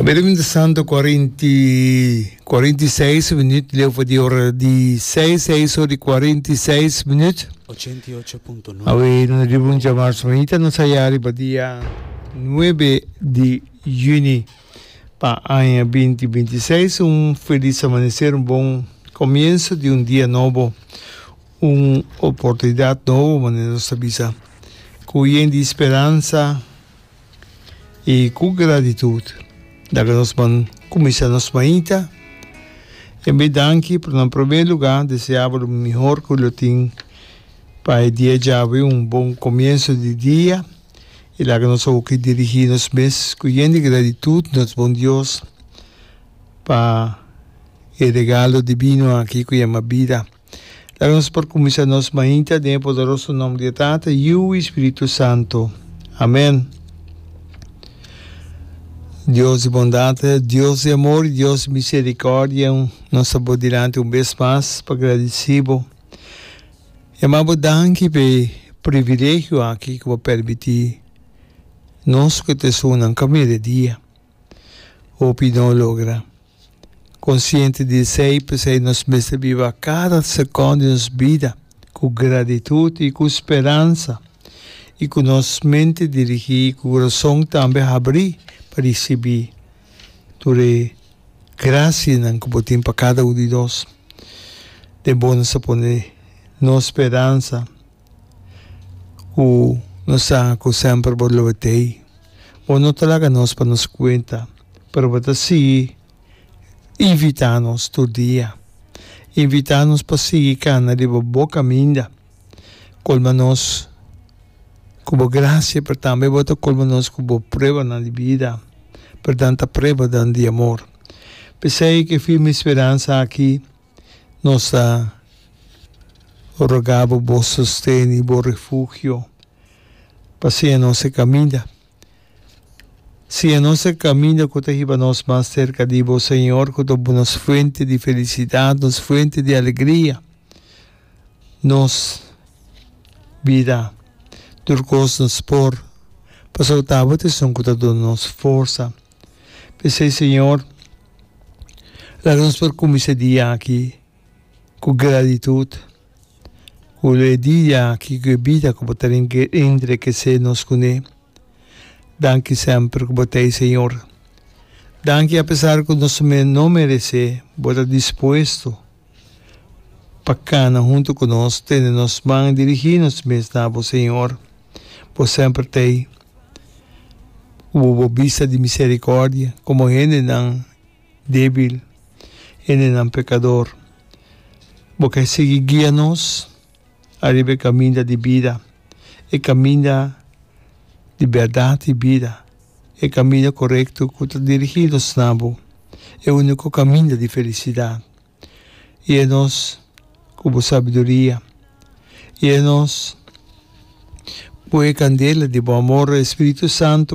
Bendición de Santo cuarenta y cuarenta y seis minutos leo voor die hora die seis seis hora cuarenta y seis minutos. Ochenta y ocho punto nueve. Awe no riba un chamar semanita no saya riba dia nueve de juni pa aña binti binti seis un feliz amanecer un bon comienzo de un dia nobo un oportunidad nobo manera no sabisa kuyen di speranza y cu gratitud daga nos man cuminsa nos maita e bay danki pero nan primer lugar deseabo lo mihor cu lo tin pa e dia djabi un bon comienzo di dia y laga nos hoki dirigi nos mes cu yen di gratitud nos bon Dios pa e regalo divino aki cu yama bida. Laga nos por kuminsá nos mainta den e poderoso nomber di e Tata, Yu i Spiritu Santu. Amèn. Dios di bondat, Dios di amor i Dios di miserikòrdia, nos ta bo dilanti un bes mas pa gradisí bo i ama bo danki pa e privilegio aki ku bo pèrmití nos ku e tresúrnan kaminda e dia. Hopi no logra. Konsiente di esei, p'esei nos mester biba kada sekon di nos bida ku gratitut i ku speransa i ku nos mente dirigí i ku kurason tambe habrí pa risibí tur e grasianan ku bo tin pa kada un di nos. Den bo nos a pone nos speransa ku no sa ku semper bo lo betei. Bo no ta laga nos pa nos kuenta, pero bo ta sigui invitá nos tur dia. Invitá nos pa sigui kana riba bo kaminda. Kolma nos ku bo grasia, pero tambe bo ta kolma nos ku bo pruebanan di bida, pero nan ta pruebanan di amor. P'esei ku e firme speransa aki. Nos ta roga bo bo sosten i bo refugio pa siña nos e kaminda. Siña nos e kaminda ku ta hiba nos mas serka di bo, Señor, ku ta nos fuente di felisidat, nos fuente di alegria. Nos bida tur kos nos por pasá bo tabata esun ku ta duna nos forsa. P'esei, Señor, laga nos por kuminsá e dia aki ku gratitud, ku lo e dia aki, ku e bida ku Bo ta entreg'esé nos kuné. Danki semper ku Bo ta ei, Señor. Danki apesar ku nos no meresé, Bo ta dispuesto. pa kana huntu ku nos, tende nos man i dirigí nos mes na bo, Señor. Bo semper ta ei ku bo bo bista di miserikòrdia komo hendenan débil, hendenan pekador. Bo ke sigui guia nos. Ariba e kaminda di bida, e kaminda di bèrdat di bida, e kaminda korekto ku ta dirigí nos na Bo, e úniko kaminda di felisidat. I a nos ku Bo sabiduria, i a nos ku e kandela di Bo amor, e Spiritu Santu,